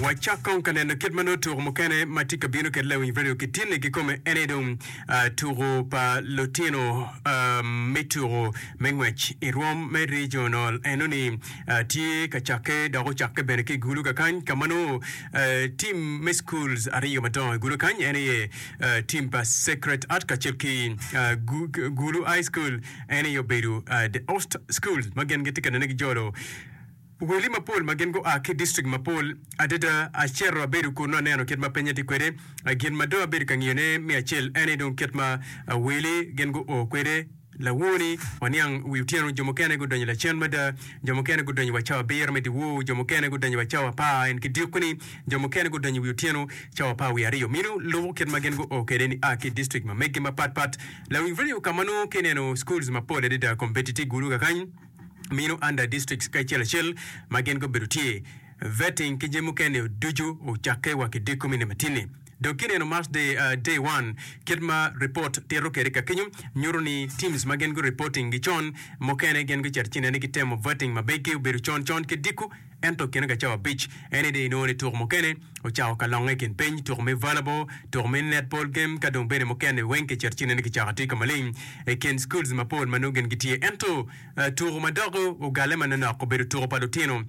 Wacak kong ka neno kit ma nongo tuko mukene ma tye ka bino kit Lawiny Radio kitinne kikome en aye dong ah, tuko pa lutino ah, me tuko me ngwec i rwom me regional enoni ah, tye ka cakke dok ocakke bene ki i gulu kakany ka ma nongo ah, tim me schools aryo madongo i gulu kany en aye ah, tim pa Sacred Heart kacel ki ah, Gu- Gu- gulu high school en aye obedo ah, the host school ma gin gitye ka nene gijolo Weli mapol ma gin gua ki distrikt mapol adada. Acito abedo kunnu aneno kit ma pinye tye kwede. Gin ma dong abedo ka ngiyone me acel en aye dong kit ma weli gin guo kwede. Lawoo-ni, waniang wi otyeno jo mukene gudonyo lacen mada, jo mukene gudonyo wa cawa abiro me dyewor, jo mukene gudonyo wa cawa apar en ki dyekko-ni, jo mukene gudonyo wi otyeno cawa apar wiye aryo. Meno lubo kit ma gin guo kwede ni a ki distrikt ma megi mapatpat. Lawiny radio ka ma nongo ki ineno schools mapol adada kombeddi tye gulu kakany. mino under districts kacel acel ma gin gubedo tye, vetting ki jami mukene o ducu ocakke wa ki diko me Nematine. Dong kineno March day, uh, day one, kit ma report tito kede kakenyo nyuto ni teams ma gin gu reporting gi con mukene gin gucet ci nene ki temo vetting ma begi obedo con con ki diko Ento kine ka cawa abic eni dong inongo ni tuko mukene ocako ka longe i kin piny, tuko me volleyball, tuko me netball game ka dong bene mukene weng kicito ci ineno kicako atika maleng i kin schools mapol ma nongo gin gitye. Ento tuko ma dok ogalle manonok obedo tuko pa lutino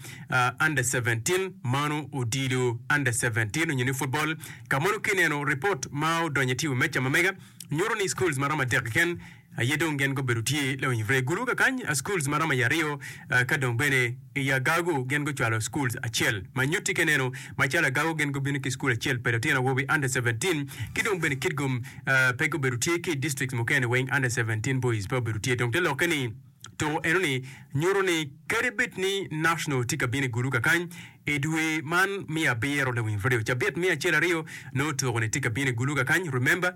under seventeen, mano odilo under seventeen onyo ni football. Ka mono kineno report ma odonyo i TV meca ma mega nyuto ni schools maromo adek keken aye dong gen gubedo tye lawiny vrye gulu kakany a schools maromo i aryo ka dong bene i agagu gen gucwalo schools acel ma nyutti keneno macalo agagu gen gubino ki school acel pa litino awobi under 17 ki dong bene kitgum pe gubedo tye ki i districts mukene weng under 17 boys pe obedo tye dong te lokke ni to enoni nyuto ni kadi bed ni national tye ka bino i gulu kakany i dwe man me abiro lawiny vrye cabit me acel aryo nongo tuko ni tye ka bino i gulu kakany remember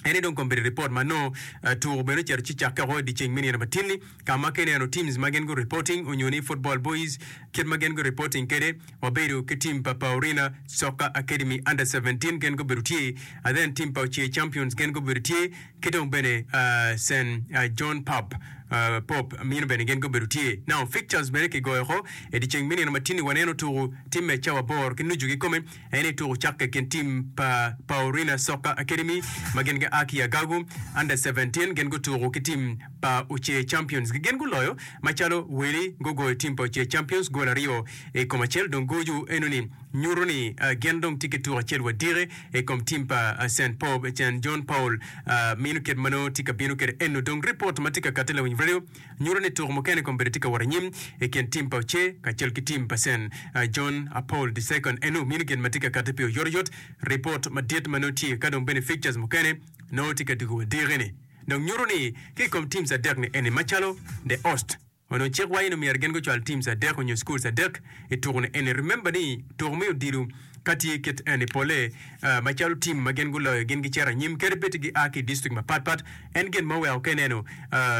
En ni dong kombeddi report ma nongo tuku bene ocito ci cakke oko idye ceng me nino matin-ni ka ma ka ineno teams ma gin gu reporting onyo ni football boys kit ma gin gu reporting kede wabedo ki team pa Paurina Soccer Academy under seventeen gin gubedo tye and then team pa Oce Champions gin gubedo tye ki dong bene Saint John Pub Pop mino bene gin gubedo tye. Now fixtures bene kigoyo oko idye ceng me nino matin-ni waneno tuku team me cawa bor ki nucu kikome En aye tuku cakke i kin tim pa Paurina Soccer Academy ma gin gia ki i Agagu. Under seventeen gin gutuku ki tim pa Uche Champions ki gin guloyo macalo weli. Gugoyo tim pa Uche Champions gol aryo i kom acel dong goju enoni nyuto ni gin dong tye ki tuku acel wa diki i kom tim pa Saint Paul Saint John Paul meno kit ma nongo tye ka bino kwede eno. Dong ripot ma tye ka katte Lawiny Radio. nyuto ni tuko mukene kong bene tye ka wot anyim i kin tim pa Oce kacel ki tim pa Sen. John a Paul the Second en nongo mino gin ma tye ka katte pi oyotoyot. Ripot madit ma nongo tye ka dong bene fixtures mukene nongo tye ka diko wa diki-ni dong nyuto ni ki i kom teams adek-ni eni macalo The Ost onongo cik waco ni myero gin gucwal teams adek onyo schools adek i tuko-ni eni. Remember ni tuko me odilo Ka tye kit eni, polle macalo tim ma gin guloyo gin gicito anyim kede bed gia ki i district mapat pat. En gin ma oweko ka ineno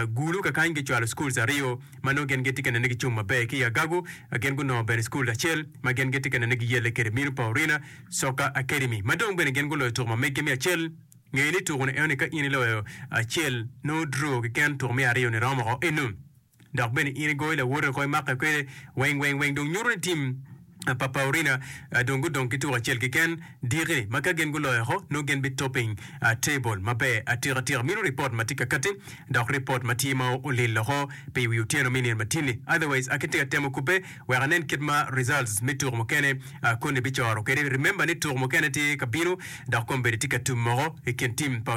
Gulu kakany gicwalo schools aryo ma nongo gin gitye ka nene gicung maber ki i Agagu, gin gunongo bene school acel ma gin gitye ka nene giyelle kede Minu Paurina Soccer Academy ma dong bene gin guloyo tuku ma meggi me acel. Ngeye ni tuku ni enoni ka in iloyo acel nongo draw keken tuku me aryo ni romo oko enu. Dok bene in igoyo lawote oko imake kwede weng weng weng dong nyuto ni tim pa Paurina dong gudong ki tuko acel keken diki-ni ma ka gin guloyo oko nongo gin bi topping table maber atika tika minu report ma tye ka katti dok report ma tye ma olil oko pi wi otyeno me nino ma tye-ni otherwise akitye ka temo kubbe wek anen kit ma results me tuko mukene koni bicoro kwede remember ni tuko mukene tye ka bino dok kombeddi tye ka tum moko i kin tim pa